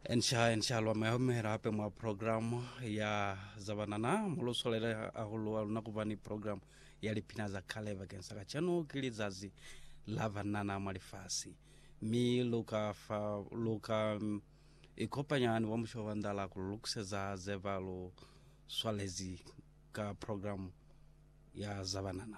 Ensha ensha lwa muyahumihela hape mwa programu ya zabanana mulusolele hahulu aluna kuba ni programu ya lipina za kale bakeng sa kacenu ki lizazi la banana mwa lifasi mi luka fa luka mm, ikopanya ni wa musho wa ndala kululukuseza zeba lu swalezi ka programu ya zabanana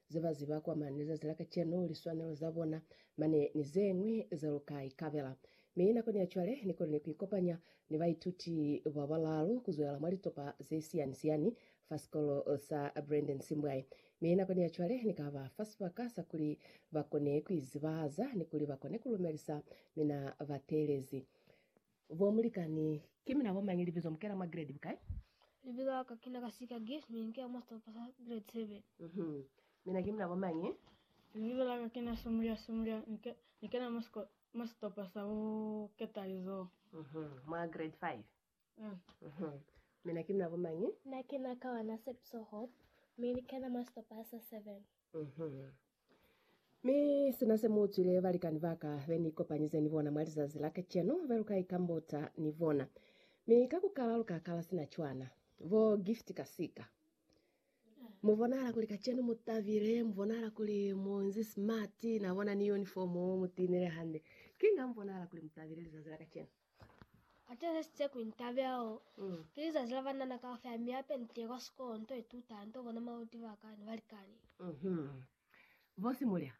Ze ba ziba kwa mane lizazi la kacenu, liswanelo za bona mane ni ze ñwi ze lu ka ikabela. Mi nakoni ya cwale, ni konile ku ikopanya ni baituti ba balalu ku zwelela mwa litopa ze siyani-siyani fa sikolo sa Brandon Simbwayi. Mi nakoni ya cwale, ni ka ba fa sibaka sa kuli ba kone ku izibahaza ni kuli ba kone ku lumelisa mina ba teelezi. Bo mulikani, ki mina bo mañi? Libizo, Mukela mwa grade bukai? Libizo la ka kina Kasika Gift, mi nkela mwa sitopa sa grade seven. Mhm. Mina ki mina bo mañi? Libizo la ka kina Sumulya Sumulya, ni kena mwa sitopa sa bo keta lizoho. Mhm. Mwa grade five? Uhm. Mhm. Mina ki mina bo mañi? Mina kina Kawana Sepiso Hope, mi ni kena mwa sitopa sa seven. Mhm. Mi sina se mu zwile balikani ba ka be ni kopanyize ni bona mwa lizazi la kacenu, be lu ka ikambota ni bona. Mi ka ku kala lu ka kala sina cwana. Bo Gift kasika. Mu bonahala kuli kacenu mu tabile, mu bonahala kuli mu nzi smart, na bona ni uniform mu tinile hande. Kinga mu bonahala kuli mu tabile lizazi la kacenu? Ateresitse kuli ntabe ao ki lizazi la banana kaufela mi ape nite kwa sikolo nto ituta nto bona maluti ba ka ne balikani. Mhm. Bosi mulya,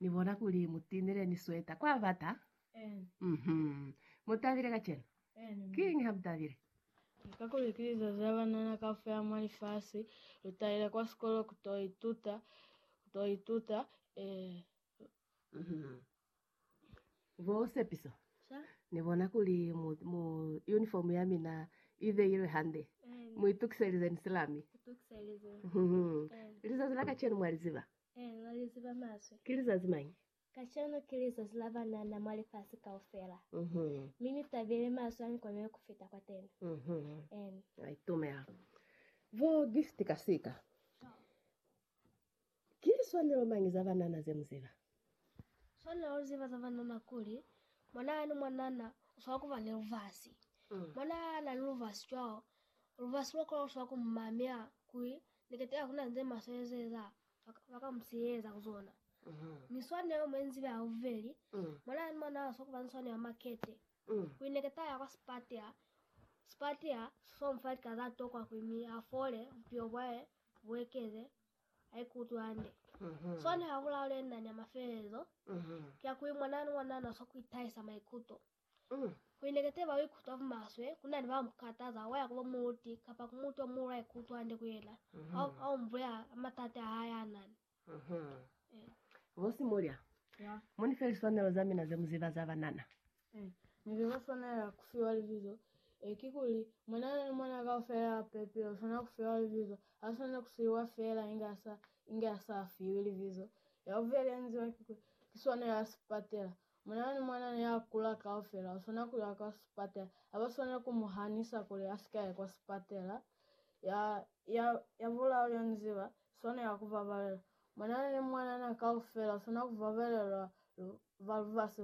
ni bona kuli mutinile ni sweta. Kwa bata? Mhm. Mutabile kacenu? Kiñi ha mutabile? Kakuli ki lizazi la banana kaufela mwa lifasi, lu talile kwa sikolo kuto ituta, kuto ituta, eh. Mhm. Bo Sepiso ni bona kuli mu, mu, uniform ya mina i beilwe hande. Mu itukiselize ni silami. Itukiselize. Mhm. Lizazi la kacenu mwa li ziba? Eh, na li ziba maswe. Ki lizazi mañi? Kacenu ki lizazi la banana mwa lifasi kaufela. Mhm. Mi ni tabile maswe a ni kobele ku fita kwateni. Mhm. Eh. Na itumela. Bo Gift kasika. Ki liswanelo mañi za banana ze mu ziba? Swanela ku ziba za banana kuli, mwana yani mwanana u swanela ku ba ni lubasi. Mwana ha na ni lubasi cwalo, lubasi lwa kona ku swanela ku mu mamela kuli ni kete ha ku na ze maswe ze eza, ba ka mu siheza ku zona. Mi swanelo mwe ni zibe ya bubeli, mwana yani mwanana u swanela ku ba ni swanelo ya makete kuli ni kete ha ya kwa sipatela, sipatela si swanela ku mu fa lika za tokwa kuli mi a fole, bupilo bwa hae bu ekeze haikutwi hande. Soni ha ku laulena nya mafelelezo ki ya kuli mwananu wa nana uswa ku itahisa maikuto. Kuli ne keteba uikutwa bumaswe, ku na ni ba mu kataza, wa ya ku bo muluti kapa ku mutu o muulu ha ikutwi hande ku yena, a o mu bulela ka matati a hae a nani. Bosi mulya, mo ni feli swanelo za mina ze mu ziba za banana. Ee, ne lu ka swanela ku fiwa libizo. Ee, kikuli, mwana ni mwana kaufela a pepile u swanela ku fiwa libizo. Ha swaneli ku siiwa feela inge a sa, inge a sa fiwi libizo. Ya bubeli ya nziwa ki kuli, ki swanelo ya sipatela. Mwana ni mwana ni a kula kaufela u swanela ku ya kwa sipatela. Ha ba swaneli ku mu hanisa kuli a si ka ya kwa sipatela. Ya, ya, ya bulalu ya nziba, swanela ku babalela. Mwanana ni mwanana kaufela u swanela ku babelelwa lu, ba lubasi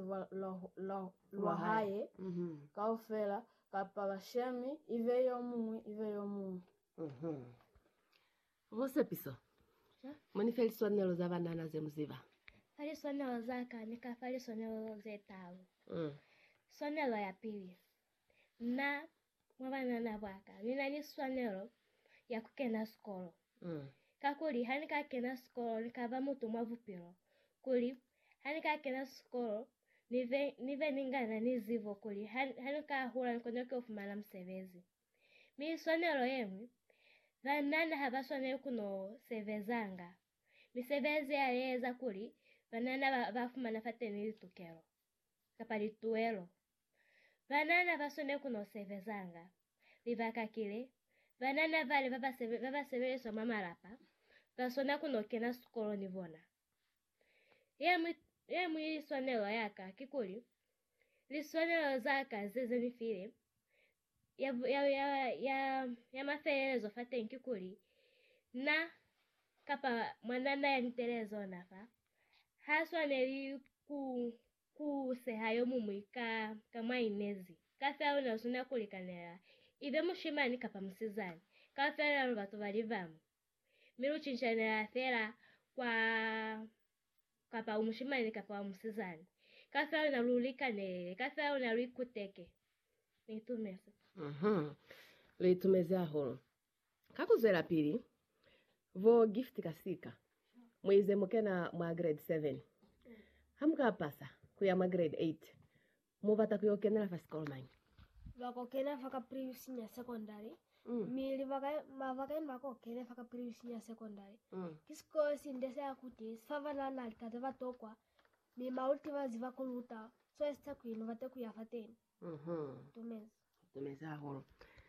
lwa hae kaufela, kapa bashemi, ibe yo muñwi, ibe yo muñwi. Ho sepiso. Mo ni fe liswanelo za banana ze mu ziba. Fa liswanelo za ka, ni ka fa liswanelo ze talu. Swanelo ya pili, Na Mwa banana baka, ni na ni swanelo ya ku kena sikolo. Kakuli ha ni ka kena sikolo, ni ka ba mutu mwa bupilo. Kuli ha ni ka kena sikolo, ni be, ni be ni nga na ni zibo kuli ha, ha ni ka hula ni kona ku fumana musebezi. Mi swanelo ye ñwi, banana ha ba swaneli ku no sebezanga. Misebezi ya li eza kuli banana ba, ba fumana fateni litukelo. kapa lituelo. Banana ba swanela ku no sebezanga. Libaka kili, banana bale ba ba sebeliswa mwa malapa ba swanela ku no kena sikolo ni bona. Ye ñwi swanelo ya ka kikuli, liswanelo za ka ze ze ni file ya, ya, ya, ya, ya mafelelezo fateñi kikuli, Na, kapa mwanana yanitele zona fa, ha swaneli ku, ku seha yomuñwi ka, ka mwa inezi. Kaufela luna luswanela kulikanela, ibe mushimani kapa musizani. Kaufela luna lu batu balibamu. mi lu cincanelela fela kwa kapa u mushimani kapa u musizani, ka fela luna lu likanelele, ka fela luna lu ikuteke. Ni itumezi. Uh-huh. Lu itumezi hahulu. Ka ku zwelapili, bo Gift kasika, mu ize mu kena mwa Grade 7. Ha mu ka pasa ku ya mwa Grade 8, Mu bata ku yo kenela fa sikolo mañi? Ba ko kena fa Kapiriyu Senior Secondary. Mm. Mi libaka ba bakañi ba ko kene fa Kapiriyu Senior Secondary. Mm. Ki sikolo si nde sa ya ku te, si fa bana na litate ba tokwa, mi maluti ba ziba ku luta. Cwale si ta ku ino bate ku ya fateni. Mm-hmm. Tumeza. Tumeza hahulu.